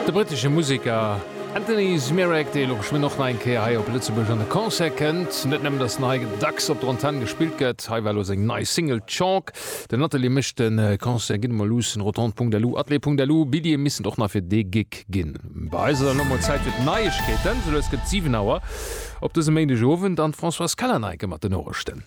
De brittesche Museker Anthony Zmirak, dee lo geschwënn och nach eng Kéier hei op Lëtzebuerg an de Concert kënnt. Net nëmmen, datt den hei dacks op der Antenn gespillt gëtt, hei war elo seng nei Single Chalk. Den Atelier mécht de Concert Ginn emol luussen, Rotonde.lu, Atelier.lu, Billjeeë missten och nach fir dee Gig ginn. Bei eis ass elo mol Zäit fir d'Neiegkeeten. Sou lues gëtt et 7 Auer op dësem Méindegowend an d'Françoise Callaneike mat den Noriichten.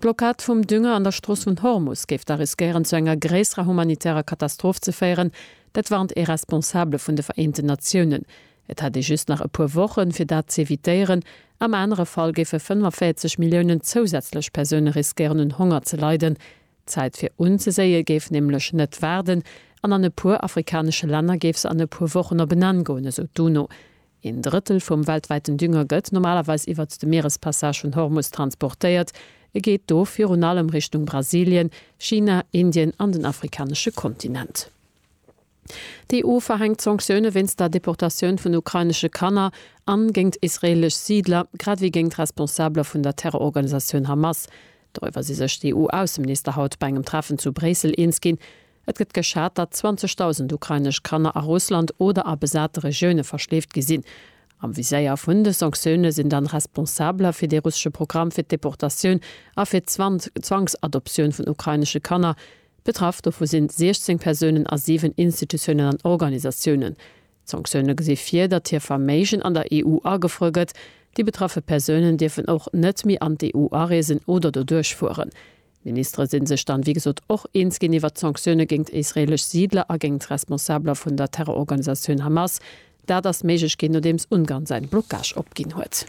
D'Blockad vum Dünger an der Strooss vun Hormus géif da riskéieren zu enger gréisserer humanitärer Katastroph ze féieren. Dat warnt ee Responsabele vun de Vereenten Natiounen. Et hätt ee just nach e puer Wochen, fir dat z'evitéieren. Am anere Fall géife 45 Milliounen zousätzlech Persoune riskéieren un Honger ze leiden. D'Zäit fir unzeséie géif nämlech net waarden an an e puer afrikanesche Länner géif se an e puer Wochen op en Enn goen, esou d'UNO. Een Drëttel vum weltwäiten Dünger gëtt normalerweis iwwert de Mierespassage vun Hormus transportéiert. E geet do virun allem Richtung Brasilien, China, Indien an den afrikanesche Kontinent. D'EU verhänkt Sanktioune wéinst der Deportatioun vun ukrainesche Kanner a géingt israeelesch Siidler, grad ewéi géingt Responsabler vun der Terrororganisatioun Hamas. Doriwwer si sech d'EU-Ausseminister haut bei engem Treffen zu Bréissel eens ginn. Et gëtt geschat, datt 20.000 ukrainesch Kanner a Russland oder a besate Regioune verschleeft gi sinn. Am Viséier vun de Sanktioune sinn dann Responsabler fir dee russesche Programm fir d'Deportatioun a fir d'Zwangsadoptioun vun ukrainesche Kanner. Betraff dovu sinn 16 Persounen a 7 Institutiounen an Organisatiounen. D'Sanktioune gesi vir, datt hir Verméigen an der EU agefruer gëtt. Déi betraffe Persounen dierfen och net méi an d'EU areesen oder doduerch fueren. D'Ministere si sech dann, wéi gesot, och eens ginn iwwert d'Sanktioune géint israeelesch Siidler a géint Responsabeler vun der Terrororganisatioun Hamas. Dat ass méiglech ginn, nodeems Ungarn säin Blocage opginn huet.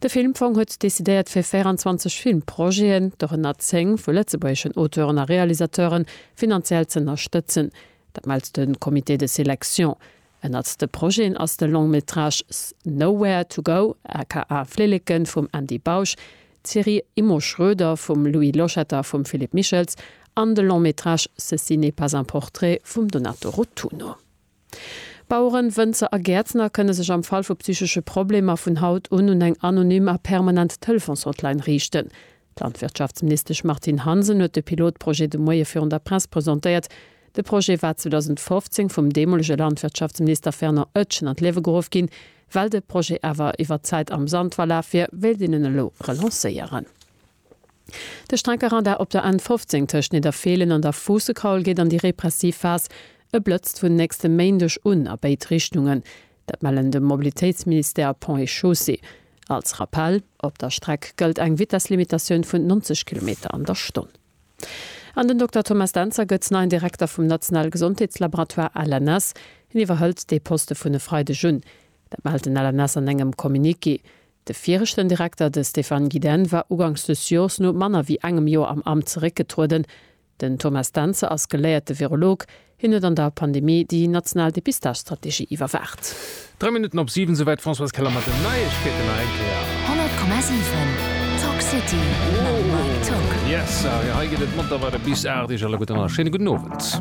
De Filmfong huet decidéiert fir 24 Filmprojeten, dorënner 10 vu lëtzebuergeschen Auteuren a Realisateuren, finanziell ze ënnerstëtzen. Dat mellt de Comité de sélection. Ënnert de Projeten ass de Long Métrage S nowhere to go aka Flilleken vum Andy Bausch, d'Serie Immo Schroeder vum Louis Loschetter, vum Philippe Michels an de Long Métrage Ceci n'est pas un portrait vum Donato Rotunno. Baueren, Wënzer a Gäertner kënne sech am Fall vu psychesche Problemer vun haut un un eng anonym a permanent Telefons-Hotline riichten. D'Landwirtschaftsministesch Martine Hansen huet de Pilotprojet de Moie virun der Press presentéiert. De Projet war 2015 vum deemolege Landwirtschaftsminister Fernand Oetsch an d'Liewe geruff ginn. Well de Projet awer iwwer d'Zäit am Sand verlaf wier, wéilt een en elo relancéieren. De Streckerradar op der N 15 tëscht Nidderfeelen an der Fuussekaul geet an déi repressiv Phas. E blëtzt vun nächste Méindeg un a béid Richtungen. Dat mellen de Mobilitéitsministère, Ponts et Chaussées. Als Rappell, Op der Streck gëllt eng Vitesslimitatioun vun 90 Kilometer an der Stonn. An den Dokter Thomas Dentzer gëtt neien Direkter vum nationale Gesondheetslaboratoire LNS. Hien iwwerhëlt dee Poste vun e Freideg un. Dat mellt den LNS an engem Communiqué. De viregten Direkter, de Stéphane Gidenne, war ugangs des Jors no manner wéi engem Jor am Amt zeréckgetrueden. Den Thomas Dentze ass geléierte Virolog. Hien huet an der Pandemie déi national Depistagestrategie iwwerwaacht. Dräi Minutten op siwen, souwäit d'Françoise Keller mat den Neiegkeeten nach eng Kéier. 100,7 Talk City mam Mike Tock. Yes sir, jo hei geet et munter weider bis 8 Iech alleguerten a schéine gudden Owend.